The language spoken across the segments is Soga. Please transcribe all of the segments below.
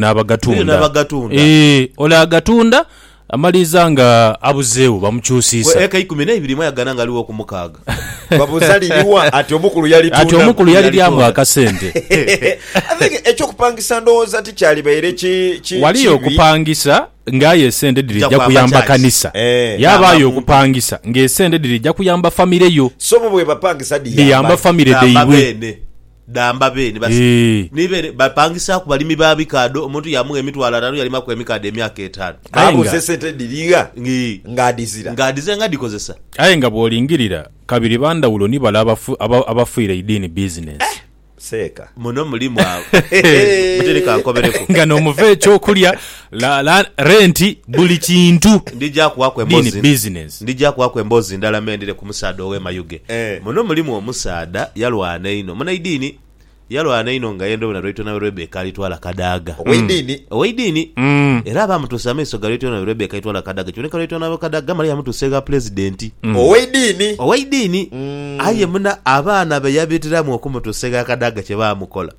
n'abagatunda. Eyo n'abagatunda. Ee, ole agatunda amaliriza nga abuzeegho bamukyusiisa. Bwe eka ikumi n'eibiri mwayagana nga aligho ku mukaaga. Babuuza liri wa? Ati omukulu yalitunda. Ati omukulu yaliryamu akasente. I think eky'okupangisa ndowooza ti kyalibaire ki, ki, Waliyo kibi. okupangisa nga aye esente dhirija Dhija kwamba kuyamba church. kanisa. Eh. Yaabaayo Yamba muntu. okupangisa ng'esente dhirija kuyamba famire yo, So bo bwebapangisa dhiyamba dhiyamba ki? famire Dhamba dhaibwe. beene. dhamba be ni basi Eeh. ni be bapangisaaku balimi ba bikaadho, omuntu yaamugha emitwalo ataanu yalimaku emikaadho emyaka etaanu. Aye nga- Baabuuza esente edhirigha Ii. ng'adhizira. Ng'adhizira nga adhikozesa. Aye nga bw'olingirira, kabiri ba ndhawulo ni bale abafu, aba, abafuira eidiini bizinensi. Seeka. Muno mulimu abo. Muteri kankobereku. Nga n'omuva eky'okulya. La, la, renti, buli kintu. Ndija kuwaku Bini embozi, business. ndija kuwaku embozi ndala me ndhire ku musaadha ow'e Mayuge. Eh. Muno mulimu omusaadha yalwana einho, munaidiini, yalwana einho nga yendha obwire na Lwaitonawe Rebecca alitwala Kadaga. Ow'eidiini? Ow'eidiini. Mm. Era baamutuusa amaiso ga Lwaitonawe Rebecca alitwala Kadaga. Kiboneka Lwaitonawe Kadaga male yamutuusa egha Pulezidenti. Ow'eidiini? Ow'eidiini. Mm. Aye muna abaana be yabitiramu okumutuusa egha Kadaga kye baamukola.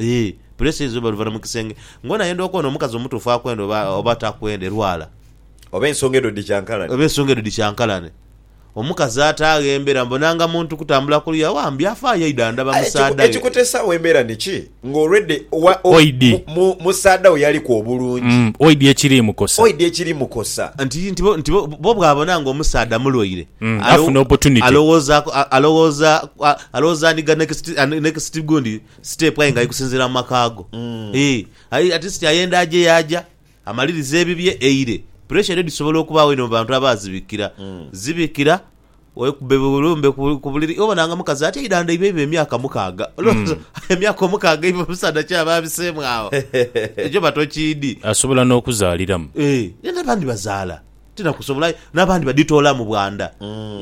Ii, Puleesa eyinza oba luvanha mu kisenge. Ng'ono ayenda okwona omukazi omutuufu akwenda oba oba takwenda erwala. Oba ensonga edho dhikyankalane. Oba ensonga edho dhikyankalane. Omukazi ataagho embera mbu nanga muntu kutambula ku luya wa mbi afaayo aidha andhaba Aye ekiku, musaadha ghe. ekikutesaagho embera ni ki? Nga already wa, o, Oidhi. mu, mu, musaadha we yaliku obulungi. Mm, oidhi ekiri mukosa. Oidhi ekiri mukosa. Nti, nti bo, nti bo, bo bw'abona nga omusaadha mulwaire, Mm, alo, afuna opportunity. alowooza, a, alowooza, a, alowooza anigha next, a, next gundi. Siteepu aye nga ali kusinziira mu maka go. Eeh, at least ayenda aje yaaja, amalirize ebibye, eire. Puresha edho dhisobola okubaagho inho mu bantu abaazibikira. Zibikira, weekube bulumbe ku buliri. Obona nga mukazi ati eidhandha eiba eiba emyaka mukaaga. Olowooza emyaka omukaaga eiba omusaadha ki aba abiseemu agho? Ekyo batokiidhi. Asobola n'okuzaaliramu. Eeh, ye n'abandi bazaala. tinakusobola aye n'abandi badhitoolamu bwa ndha.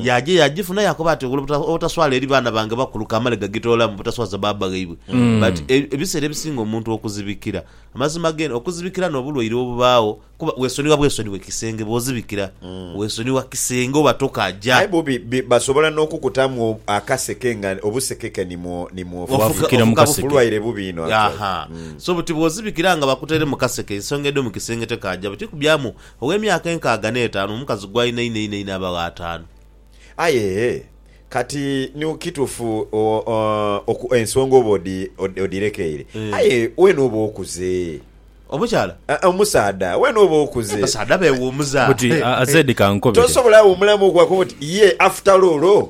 Yaaja yaagifuna yaakoba ati, Obuta- obutaswala eri baana bange bakulu kamale gagitoolamu butaswaza baaba ghaibwe. But e- ebiseera ebisinga omuntu okuzibikira, amazima geene, okuzibikira n'obulwaire obubaagho, kuba weesonigha bwesonighe kisenge bw'ozibikira, weesonigha kisenge oba toka aja. Aye bubi bi- basobola n'okukutamu o- akaseke nga obusekeke ni mwo- ni mwofu. Waafukira mu kaseke. Bulwaire bubi inho actually. Aha. So buti bw'ozibikira nga bakuteire mu kaseke, ensonga edho mu kisenge tekaaja, buti kubyamu Ow'emyaka enkaaga n'etaanu, omukazi gw'alina einho einho einho abagho ataanu. Aye kati ni kitufu oku, ensonga oba odirekeire, aye wena oba okuze. Omukyala? Aa, omusaadha, wena oba okuze. Abasaadha bewumuza. Buti, Azedi kankobe. Tosobola wumulamu okwakoba oti, Ye, after all.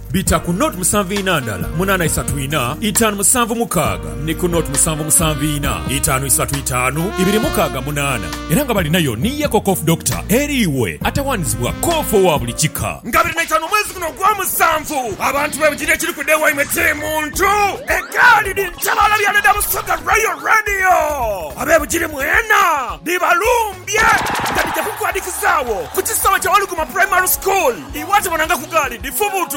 Bita ku nought musanvu ina ndala munana isatu ina itanu musanvu mukaaga ni ku nought musanvu musanvu ina itanu isatu itanu ibiri mukaaga munana. Era nga balinayo ni Yeko Cough Doctor eri iwe atawanizibwa cough owa buli kika. Nga biri naitanu omwezi guno ogwa musanvu, abantu be bujiri ekiri kuda ewaimwe kiri muntu. Egaali dhi ntabaala bya Leda Busoga Royal Radio abe Bugiri mwena dhibalumbye nga dhija kukuadikizaagho ku kisaawe kya Waluguma Primary School. Iwe atabonangaku gaali dhifubuutuke.